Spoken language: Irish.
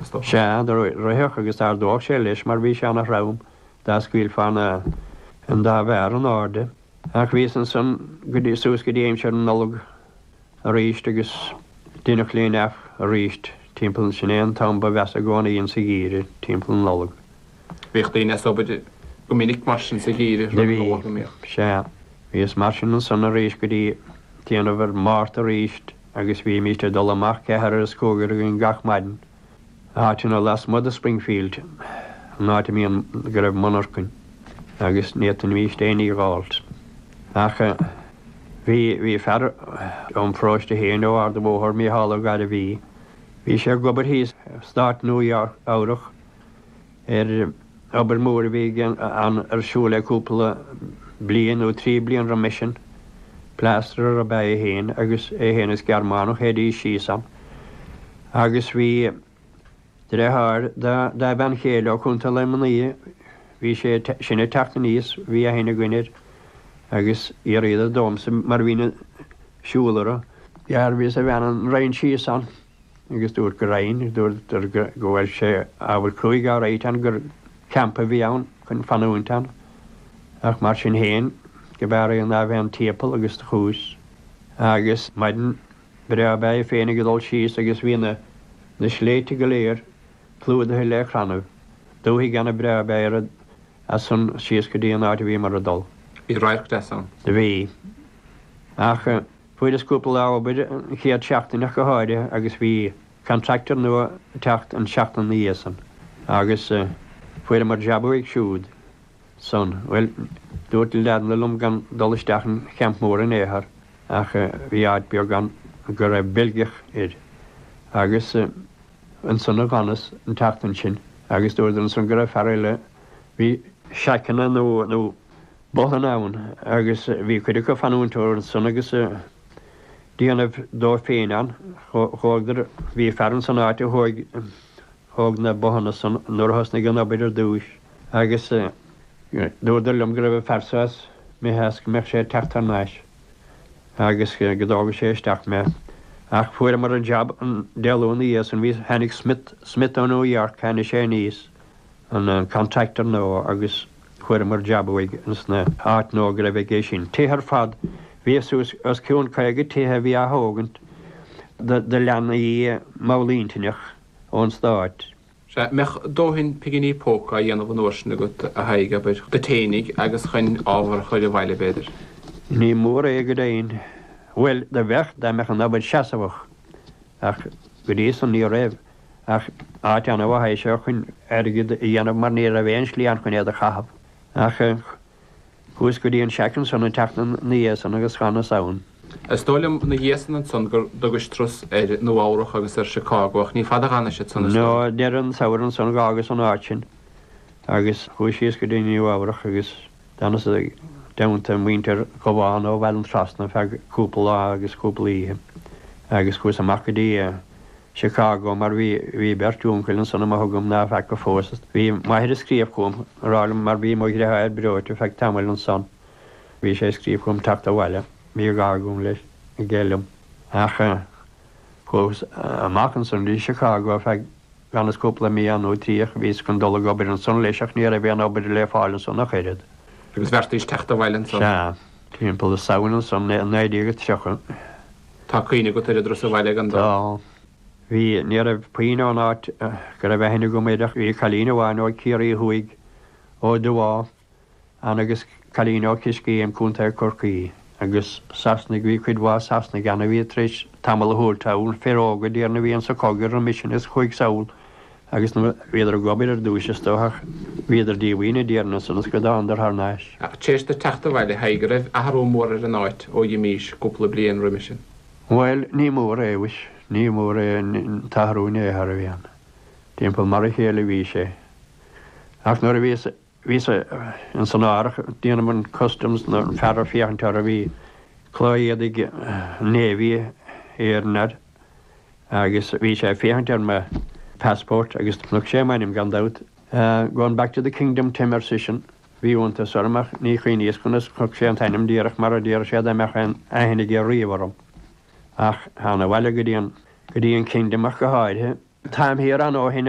Sea, do rithfeadh agus d'ardódh sé leis mar bhí sé ana throm, dá scaoilfeá na an dá mhéar in airde. Ach bhíos ansan go dtí, suas go dtí aimsir na Nollag aríst agus deineadh laying off aríst timpeall, sin é an t-am ba mheasa i gcónaí insa gheimhreadh, timpeall na Nollag. Bhíodh daoine as obair go minic mar sin sa gheimhreadh, rud nach bhfacamar. Sea. Bhíos mar sin ansan aríst go dtí déanamh ar Mhárta aríst. agus bhímíst ag dul amach ceathair is cúigear againn gach maidin, áiteanna lasmuigh de Springfield, an áit a mbíonn, go raibh monarchain agus n'fhéadfaimíst éinní a dh'fháilt. Ach bhí, bhí fear óm pharóiste féin ó Ard a' Bhóthair, Mícheál Ó Gairbhí, bhí sé ag obair thíos i Stáit Nua Eabhrach, ar obair mhór a bhí ar siúl le cúpla bliain nó trí bliana roimis sin. Pléastrar ab ea é féin agus é féin is Gearmánach théidís síos ann agus bhí dreatháir dá bhean chéile ó Chontae Luimní, bhí sé sin ag teacht aníos, bhí aithne againn air agus fhiafraíodar domhsa mar bhínn ag siúl ar Ó Gairbhí is a bhean, an raghainn síos ann. agus dúrt go raghainn, agus dúradar go bhfuil sé ábhar cruaidh á ráidht ann gur campa a bhí ann chun fanúint ann, ach mar sin féin go b'fhearr é ná a bheith an timpeall agus do chuas agus maidin breá ab ea é féin ag dul síos agus bhí na na sléibhte go léir clúdaithe le chrannaibh, dúthaigh ana breá ab ea é rud as san síos go dtí an áit a bhíomar ag dul. Bhí radharc deas ann. Do bhí. Ach. Fuaireas cúpla lá obair an chéad seachtain ach go háirithe agus bhí contractor nua ag teacht an tseachtain na dhiaidh san agus fuaireamar jab uaidh siúd san. Bhuel, dúirt na leaideanna liom gan dul isteach 'on champ mór in aon chor ach bhí áit beag ann go raibh Beilgeach air agus ansan a dh'fhanas an tseachtain sin agus dúradar ansan go raibh fear eile a bhí seaiceanna nó Bothanna ann agus bhí cuid acu ag fanúint orthu san agus a' dianamh dóibh féin ann. Chuadar, bhí fear insan áit a thóig, thóg na bothanna san nuair a thosnaig an obair ar dtúis agus dúradar liom go raibh an fear so imithe is go mbeadh sé ag teacht thar nais agus go dtógfadh sé isteach mé ach fuaireamar an job an Dé Luain na dhiaidh san bhí, tháinig Smith, Smith ó New York, tháinig sé aníos, an contractor nua agus. Fuaireamar jab uaidh ins na h-áiteanna go raibh aige sin. Tithe ar fad. Bhí suas os cionn 50 tithe a bhí á thógaint do leanaí mallintinneach ón stáit. Sea, mbeadh dóthain piginí póca á dhéanamh an uair sin agat, a Thaidhg, abair, duit fhéinig agus chuin ábhar a chuir abhaile, b'fhéidir. Ní mór é go deimhin. Bhuel, do bheadh, dá mbeadh an obair seasamhach. Ach go dtí san ní raibh. Ach áit ana-mhaith é sin chun airgid a dhéanamh mar ní raibh aon slí ann chun aon ní a chaitheamh ach chuas go dtí an seaicin san ag teacht na iadsan agus Cháin na Samhan. Is dóigh liom na iadsan ansan gur dtugais trus ar Nua Eabhrach agus ar Chicago ach ní fada a d'fhanais ansan is dóigh. Nó deireadh an tsamhraidh ansan d'fhágas an áit sin agus chuas síos go dtí Nua Eabhrach agus. D'fhanas i dteannta muintir Dhubháin ó Bhaile an Trasna feadh cúpla lá agus cúpla oíche agus chuas amach go dtí Chicago mar bhí bhí beirt úncail ansan agam ná feaca fós. Bhí m'athair ag scríobh chugam ag rá liom mar bhí mo dhreatháir breoite feadh tamaill ansan bhí sé ag scríobh chugam teacht abhaile. Mar bhí gá agam leis, aige liom. Ach chuas amach ansan go dtí Chicago feadh. D'fhanas cúpla mí ann nó trí ach bhíos chun dul ag obair ansan leis ach ní raibh aon obair le fáil ansan ach oiread. Agus bheartaíos teacht abhaile ansan. Sea. Timpeall Samhain ansan i 1930. Tá cuimhne agat ar an dturas abhaile gan dabht? Tá. Bhí. Ní raibh puinn ann ón áit go raibh aithne agam orthu ach bhí cailín amháin ó Chiarraí Thuaidh, ó Dhubháth, Ann agus cailín ó Choiscéim, Co. Chorcaí, agus Sasanaigh, bhí cuid mhaith Sasanaigh ann a bhí tar éis tamall a thabhairt ann, fir óga déarfainn a bhí insa chogadh roimis sin is chuaigh sall agus nuair a bhíodar ag obair ar dtúis is dócha ach bhíodar díomhaoin déarfainn ansan is go dtánadar thar n-ais. Ach tar éis duit teacht abhaile Thaidhg an raibh athrú mór ar an áit ó dh'imís cúpla bliain roimis sin. Bhuel, ní mór é mhuis, ní mór é an t-athrú in aon chor a bhí ann. Timpeall mar a chéile a bhí sé. Ach nuair a bhíos a. Bhíos ins an árthach, déanamh an Customs nó an fear ag féachaint orthu. Bhí culaith éadaigh Navy air agus bhí sé ag féachaint ar mo passport agus chonaic sé m'ainm gan dabht. Going back to the Kingdom Tim ar seisean. Bhí iontas orm ach ní chuimhníos conas chonaic sé an t-ainm díreach mar a déarfadh sé dá mbeadh aon aithne aige riamh orm. Ach thána abhaile go dtí an go dtí an Kingdom ach go háirithe. Táim thiar ann ó shin.